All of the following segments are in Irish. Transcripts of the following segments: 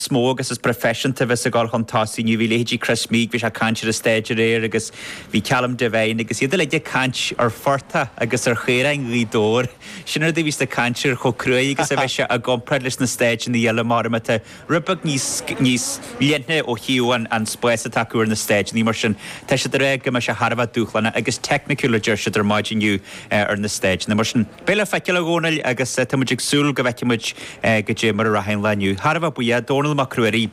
is mó agus is proifeisianta a bheas ag dul chun tosaigh inniu. Bhí leithéidí Chris Meek, bhí sé ag caint ar an stage aréir agus bhí Callum Devine agus iad uilig ag caint ar Phortá agus ar Charn Ghaoth Dobhair. Sin rud a a bhí sa chaint air chomh cruaidh agus a bheas sé i gcomparáid leis na stáideanna eile mar atá rud beag níos níos leithne ó thaobh an an spáis atá acu ar na stáideanna mar sin. Tá siad ag ráit go mbeidh sé thar a bheith dúshlánach agus technical a deir siad ar maidin inniu ar na stáideanna mar sin. Beidh le feiceáil, a Dhomhnaill, agus tá muid ag súil go bhfeicfidh muid caidé mar a rachaidh an lá inniu. Thar a bheith buíoch. Dónall Mac Ruairí,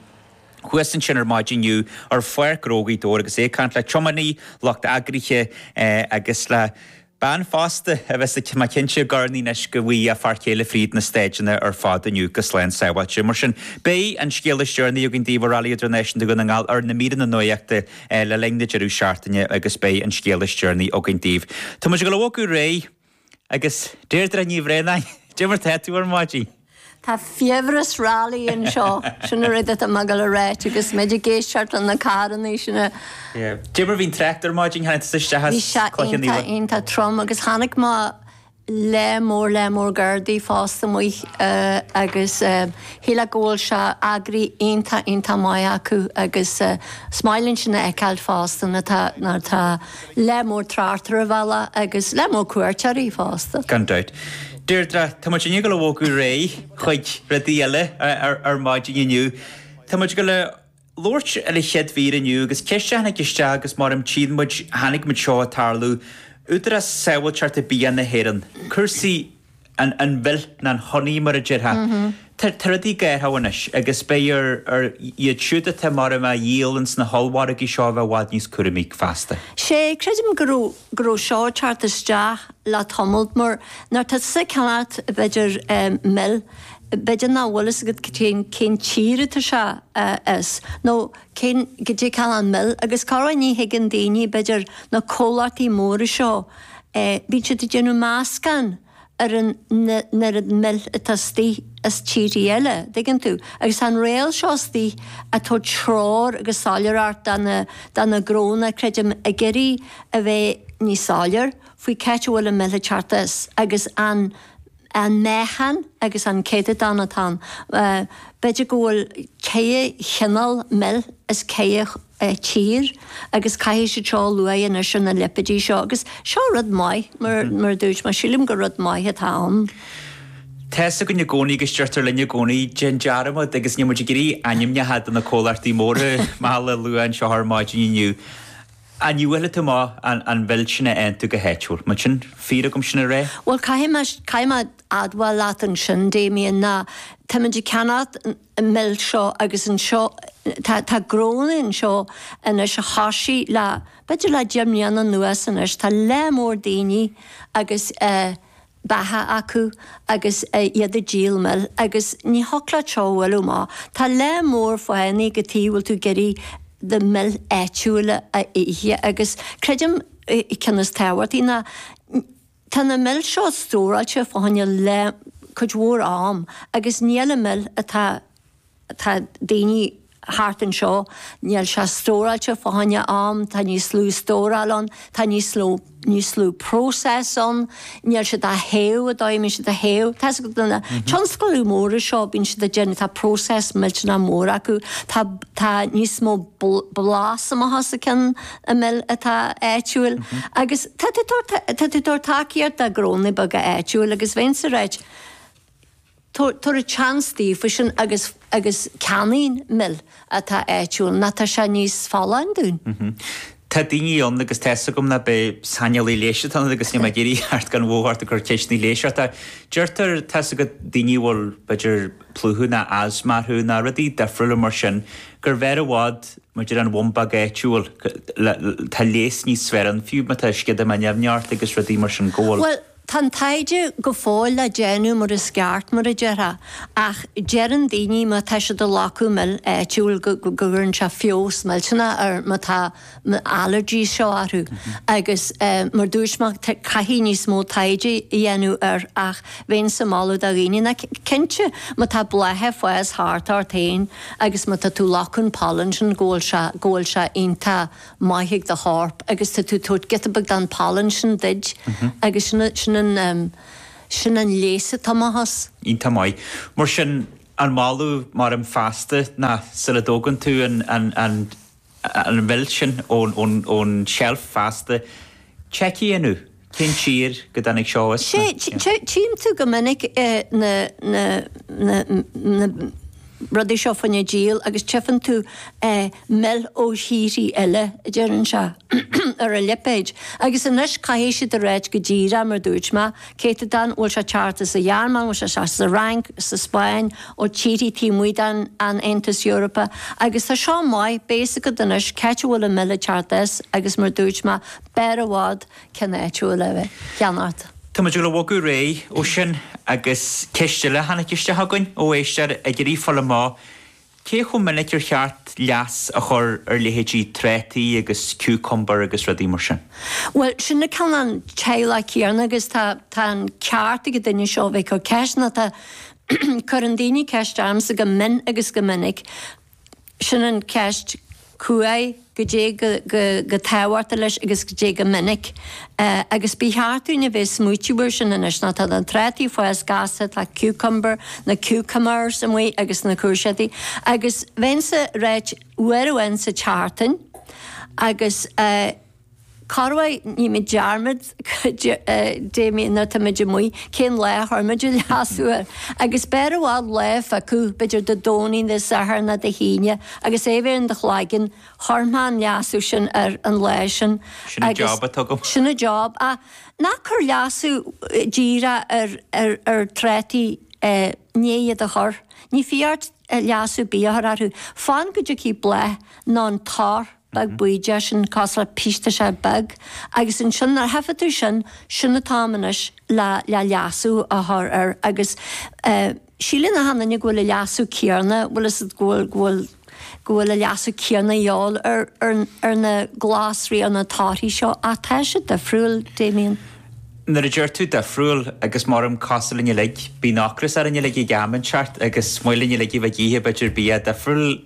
Thuas ansin ar maidin inniu ar pháirc Ghróg Uí Dhobhair agus é ag caint le tiománaí, lucht eagraithe agus le bean fásta a bheas ag tiomáint Cinnte Gorn anois go bhfaighidh a fear céile fríd na stáideanna ar fad inniu go slán sábháilte. Mar sin, beidh an scéal is deireanaí againn daoibh ó Rally Idirnáisiúnta Dhún na nGall ar na míreanna nuachta le linn na deireadh seachtaine agus beidh an scéal is deireanaí againn daoibh. Tá muid ag ullmhú go réidh. Agus Deirdre Ní Bhraonáin, caidé mar atá tú ar maidin! Tá fiabhras rally anseo. Sin an rud atá mé ag gabháil a ráit agus muid ag éisteacht leis na carrannaí sin. Caidé mar bhí an trácht ar maidin, tháinig tusa isteach as Cloich Cheann Fhaola. Bhí sé iontach, iontach trom agus chonaic mé lear mór lear mór gardaí fosta amuigh agus sílim go bhfuil sé eagraithe iontach, iontach maith acu agus is maith linn sin a fheiceáil fosta nuair atá, nuair atá. lear mór tráchta ar an bhaile agus lear mór cuairteoirí fosta. Gan dabht. Deirdre, tá muid inniu ag gabháil a bhogadh ar aghaidh chuig rudaí eile ar maidin inniu. Tá muid ag gabháil a labhairt ar an chéad mhír inniu agus ceist a tháinig isteach agus mar a tchíonn muid chonaic muid seo ag tarlú, Údarás Sábháilteachta Bia na hÉireann, cúrsaí. an mhil ná an honey mar a déarfá. Tá rudaí ag athrú anois agus beidh ar iad siúd atá mar bheadh á dhíol ins na hollmhargaí seo a bheith i bhfad níos cúramaí feasta. Sé, creidim go raibh, go raibh seo ag teacht isteach le tamalt mar nuair tá tú ag ceannacht b'fhéidir mil, b'fhéidir nach bhfuil fhios agat cén, cén tír atá sé as nó cén, caidé an cineál mil, agus cárb as, ní thuigeann daoine, b'fhéidir, na comhlachtaí móra seo, bíonn siad ag déanamh meascán ar an n-oiread mil atá istigh as tíorthaí eile, tuigeann tú, agus tá an riail seo istigh a' tabhairt treoir agus soiléireacht dá na, dá na gnónna, creidim, ag iarraidh a bheith níos soiléir faoi c'áit a bhfuil an mhil ag teacht as agus an, an meáchan agus an céatadán atá ann. B'fhéidir go bhfuil ceithre chineál mil as ceithre tír agus caithfidh siad seo a lua anois ar na lipéid seo agus seo rud maith mar a dúirt mé, sílim gur rud maith atá ann. Tá fhios againn i gcónaí agus deirtear linn i gcónaí 'déan dearmad' agus níl muid ag iarraidh ainmneacha do na comhlachtaí móra meala a lua anseo ar maidin inniu. Inniu b'fhéidir tú maith, an bhfuil sin ag aontú go háitiúil? Más fíor é, agus sin é ráite? Bhuel, caithfidh mé, caithfidh mé admháil leat ansin, Damien, ná táimid ag ceannacht an mhil seo agus anseo, tá, tá grónaí anseo anois a thoisigh le, b'fhéidir le deich mbliana anuas anois, tá lear mór daoine agus eh, beacha acu agus iad ag díol mil agus ní shoclá treo uilu má tá lear mór fáthanna cad chuige a bhfuil tú ag iarraidh do mhil áitiúil a ithe agus creidim an ceann is tábhachtaí ná tá na mil seo stóráilte fá choinne cuid mhór am agus níl an mhil atá ag daoine thart anseo, níl sé stóráilte fá choinne am, tá níos lú stóráil ann, tá níos lú, níos lú process ann, níl siad á théamh an dóigh, bíonn siad á théamh, tá's agat, na tionscail mhóra seo, bíonn siad ag déanamh, tá process millteanach mór acu, tá, tá níos mó blas amuigh as a cionn i mil atá áitiúil agus tá tú ag tabhairt, tá tú ag tabhairt tacaíocht do ghrónaí beaga áitiúil agus bheinnse ag rá duit, tabhair chance daofa sin agus agus ceannaígí an mhil atá áitiúil, mar tá sé níos folláin dúinn? Tá daoine ann agus tá's agam nach b'é saineolaí leighis atá ionat agus níl mé ag iarraidh teacht go hanmhór ort ag cur ceisteanna leighis ort ach deirtear, tá's agat, daoine a bhfuil b'fhéidir plúchadh ná asma orthu ná rudaí difriúla mar sin gurbh fhearr i bhfad maidir le an bhumbóg áitiúil, tá leigheas níos fearr ann fiú má tá sceadamán nimhneach ort agus rudaí mar sin go bhfuil. Tá an taighde go fóill le déanamh mar is ceart, mar a déarfá, ach deireann daoine má tá siad ag slogadh mil áitiúil go gcuireann sé feabhas millteanach ar má tá na allergies seo orthu agus mar dúirt mé caithfidh níos mó taighde a dhéanamh air ach bheinnse ag moladh do dhaoine ná cinnte má tá blátha ag fás thart ort féin agus má tá tú ag slogadh an pollen sin go bhfuil sé go bhfuil sé iontach maith ag do chorp agus tá tú ag tabhairt giota beag den phollen sin duit agus sin an, sin an, sin an leigheas atá amach as. Iontach maith. Mar sin, an moladh measaim feasta ná sula dtógann tú an, an, an, an mhil sin ón, ón, ón tseilf feasta, tchí tú inniu. Cén tír a dtáinig sé as ná. Tchíonn tú go minic na rudaí seo fá choinne díol agus tchífeann tú mil ó thíorthaí eile, a deireann sé, ar an lipéad. Agus anois caithfidh siad a ráit go díreach, mar dúirt mé, céatadán, an bhfuil sé ag teacht as an Ghearmáin, an bhfuil sé ag teacht as an Fhrainc, as an Spáinn, ó thíorthaí taobh amuigh den Aontas Eorpach. Agus tá seo maith, beidh a fhios agat anois cé áit a bhfuil an mhil ag teacht as agus, mar dúirt mé, B'fhearr i bhfad ceann áitiúil a cheannacht. Tá muid ag dul a bhogadh ar aghaidh ó sin agus ceist eile a tháinig isteach againn ó éisteoir ag iarraidh fáil amach cé chomh minic ar cheart leas a chur ar leithéidí 'trátaí' agus 'cucumber' agus rudaí mar sin. Bhuel, sin an cineál teaghlach céanna agus tá an ceart ag an duine seo a bheith ag cur ceist, nó tá, cuireann daoine ceist ormsa go mion agus go minic, Sin an cheist. Cá huair, goidé chomh tábhachtach leis agus goidé chomh minic. Agus ba cheart dúinn a bheith ag smaoitiú air sin anois, nó tá na trátaí ag fás gasta, tá cucumber, na cucumbers amuigh agus na cúirséadaí. Agus bheinnse ag ráit uair amháin sa tseachtain agus. Corruair nímid dearmad, Damien, nuair táimid amuigh, cén lá a chuir muid an leasú air? Agus b'fhearr i bhfad lá a phiocadh, b'fhéidir Dé Domhnaigh, Dé Sathairn nó Dé hAoine, agus é a bheith in do chloigeann, cuirfidh muid an leasú sin air an lá sin. Sin an job atá agam. Sin an job, ach ná cuir leasú díreach ar trátaí, i ndiaidh iad a chur. Níl fiacha ort leasú ar bith a chur orthu. Fan go dtiocfaidh bláth, nó an toradh. beag bídeach sin cosúil le pis tá sé beag agus ansin nuair a tchífidh tú sin sin an t-am anois le le leasú a chur air agus síleann achan duine go bhfuil an leasú céarna bhfuil fhios a'd go bhfuil go bhfuil go bhfuil an leasú céarna a dhíobháil ar ar ar na glasraí ar na torthaí seo ach tá sé difriúil Damien. Nuair a deir tú difriúil agus m'orm cosúil linn uilig bíonn ocras orainn uilig ag am inteacht agus is maith linn uilig a bheith ag ithe b'fhéidir bia difriúil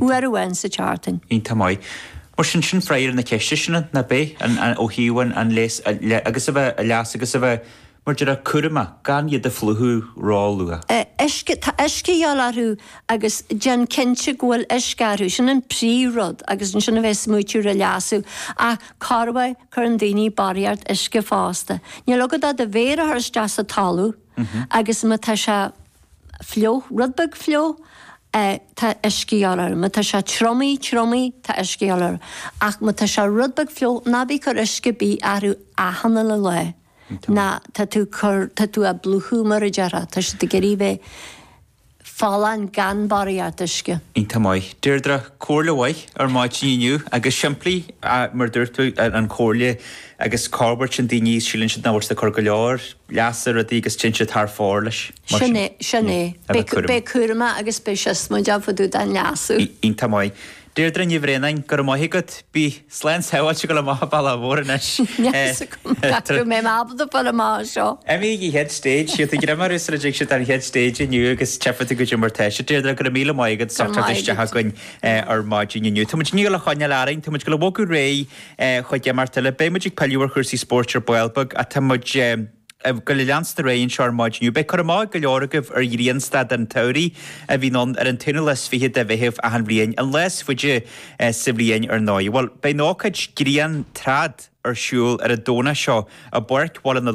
uair amháin sa tseachtain. Iontach maith. Mar sin, sin freagra na ceiste sin, nach b'é? Ó thaobh an an leas agus a bheith a leas agus a bheith, mar a déarfá, cúramach, gan iad a phlúchadh ró luath. Uisce, tá uisce a dhíobháil orthu agus déan cinnte go bhfuil uisce orthu, sin an príomh rud agus ansin a bheith ag smaoitiú ar leasú. Ach corruair cuireann daoine barraíocht uisce fosta. Níl agat ach do mhéar a chur isteach sa talamh agus ma tá sé. fliuch, rud beag fliuch, tá uisce a dhíobháil air. Má tá sé triomaithe, triomaithe, tá uisce a dhíobháil air. Ach má tá sé rud beag fliuch, ná bí ag cur uisce ar bith orthu achan uile lá, nó tá tú ag cur, tá tú á bplúchadh mar a déarfá, tá siad ag iarraidh bheith folláin gan barraíocht uisce. Iontach maith. Deirdre, comhairle mhaith ar maidin inniu agus simplí mar a dúirt tú an chomhairle agus corruair tá daoine, síleann siad nach bhfuil siad ag cur go leor, leasa ar rudaí agus téann siad thar fóir leis, mar sin. Sin é. A bheith cúramach agus a bheith siosmaideach fá dtaobh den leasú. Iontach maith. Deirdre Ní Bhraonáin, go raibh maith agat. Bí slán sábháilte ag dul amach an bhaile mhóir anois. Meas agam nach raibh mé ábalta dul amach as seo. Emmy an chéad stage, siad ag imearú sula dtig siad ar an chéad stage inniu agus tchífidh tú goidé mar tá sé. Deirdre, go raibh míle maith agat as ucht teacht isteach againn ar maidin inniu. Táimid ag dul a choinneáil orainn, táimid ag dul a bhogadh ar aghaidh. cúig déag, marc eile. Beidh muid ag pilleadh ar chúrsaí spóirt ar ball beag, ach tá muid ag gabháil a leanstan ar aghaidh anseo ar maidin inniu. Beidh cur amach ag go leor agaibh ar ghrianstad an tsamhraidh a bhíonn ann ar an t-aonú lá is fiche de Mheitheamh achan bhliain, an lá is faide sa bhliain ar ndóigh. Bhuel, beidh an ócáid Grian Trad ar siúl ar an Domhnach seo i bPáirc Bhaile na.